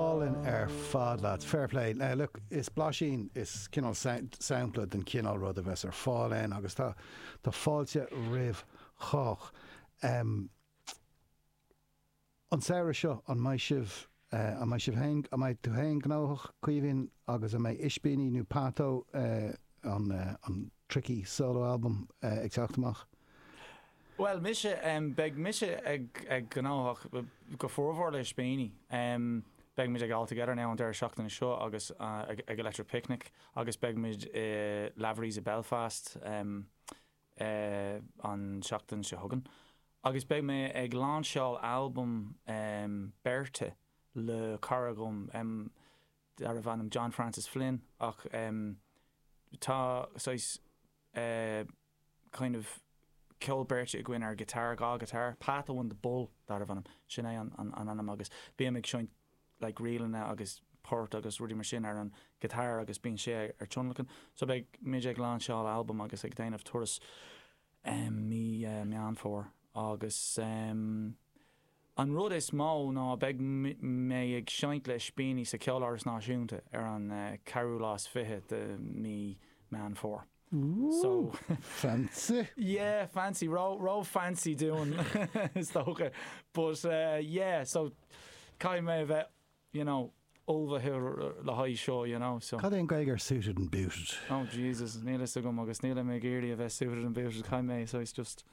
Álainn ar fad leat. Fair play. No, look, is blaisín, is cineál sampla den chineál rud a bheas ar fáil ann agus tá tá fáilte roimh chách. An samhradh seo, an mbeidh sibh, an mbeidh sibh féin, an mbeidh tú féin gnóthach, Caoimhín, agus an mbeidh Ispíní nó Pato, an an tricky solo album, ag teacht amach? Bhuel mise, beidh mise gnóthach go formhór le Ispíní. Beidh muid ag All Together Now an deireadh seachtaine seo agus ag Electric Picnic agus beidh muid i Lavery's i Belfast an tseachtain seo chugainn agus beidh mé ag lainseáil albam beirte le cara dom darbh ainm John Francis Flynn ach tá saghas kind of ceol beirte againn ar guitar, dhá guitar, Pato and the Bull darbh ainm, sin é an an ainm agus bím ag seinnt like ríleanna agus poirt agus rudaí mar sin ar an guitar agus bíonn sé ag tionlacan. So beidh muid ag lainseáil albam agus ag déanamh turas em mí eh Meán Fómhair agus em an rud is mó ná beidh mé ag seinnt le Ispíní sa Ceoláras Náisiúnta ar an eh ceathrú lá is fiche de mí Meán Fómhair. Fancy! Yeah, fancy, ró-fancy dúinn is dócha. But yeah, so caithfidh mé a bheith, you know, ullmhaithe le haghaidh seo, you know, so. Cad é an Gaeilge ar suited and booted? Oh Jesus, níl a fhios agam agus níl mé ag iarraidh a bheith suited and booted, caithfidh mé saghas just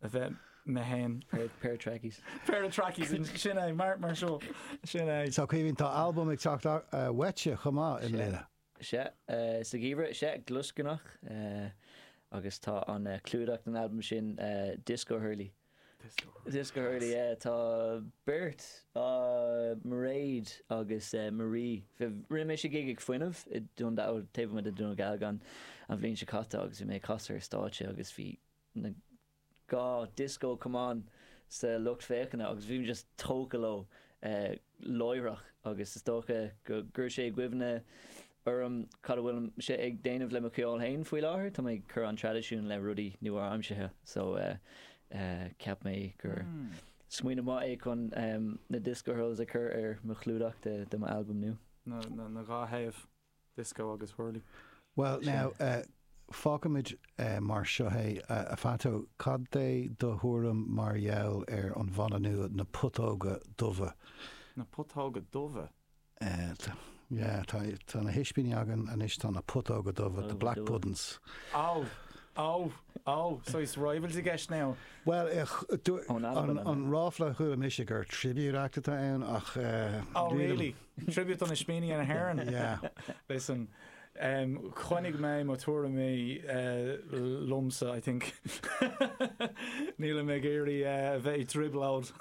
a bheith mé féin. Pair of trackies. Pair of trackies, sin é, mar seo, sin é. So Cian, tá albam ag teacht uaitse chomh maith i mbliana? Is ea, sa gheimhreadh is ea, Glioscarnach. Agus tá an clúdach den albam sin Disco Hurley. Disco Hurley. Disco Hurley, yeah. Tá beirt, Mairéad agus Marie. Rinne mise gig ag Fuinneamh i Dún Dealgan, taobh amuigh de Dún Dealgan an bhliain seo caite agus bhí mé ag casadh ar stáitse agus bhí na. dhá disco camán sa lucht féachana agus bhí mé just tógtha leo láithreach agus is dócha gur chuir sé i gcuimhne dom cad a bhfuil mise ag déanamh le mo cheol féin faoi láthair, tá mé ag cur an traidisiún le rudaí nua-aimseartha so cheap mé gur smaoineamh maith é chun na disco hurls a chur ar mo chlúdach de mo albam nua. na dhá thaobh. Disco agus Whirly. Bhuel, now, fágfaimid mar seo é, a Phádó, cad é do thuairim mar gheall ar an bhanna nua, Na Putóga Dubha? Na Putóga Dubha? Yeah, tá na hIspíní againn anois, tá na Putóga Dubha, The Black Puddin's. Oh, oh, oh, so is rivals i gceist now? Bhuel, an ráfla a chuala mise gur tribute act atá ann ach, eh, níl a fhios agam. Oh, really? Tribute d'Ispíní na hÉireann. Listen, em, coinneoidh mé mo thuairimí, eh, liomsa, I think. Nílim ag iarraidh, eh, a bheith ag driobláil.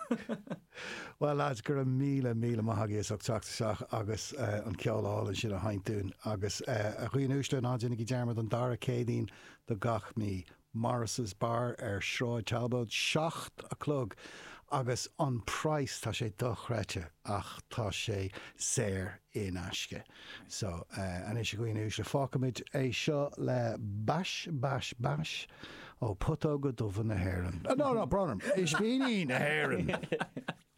Well lads, go raibh míle, míle maith agaibh as ucht teacht isteach agus, eh, an ceol álainn sin a sheinm dúinn agus, eh, a dhaoine uaisle ná déanaigí dearmad an dara Céadaoin de gach mí. Morris's Bar ar Sráid Talbot, seacht a chlog agus an price, tá sé dochreidte ach tá sé saor in aisce. So, anois a dhaoine uaisle, fágfaimid é seo le bais, bais, bais ó putóga dubha na hÉireann. No, no, brón orm, ispíní na hÉireann!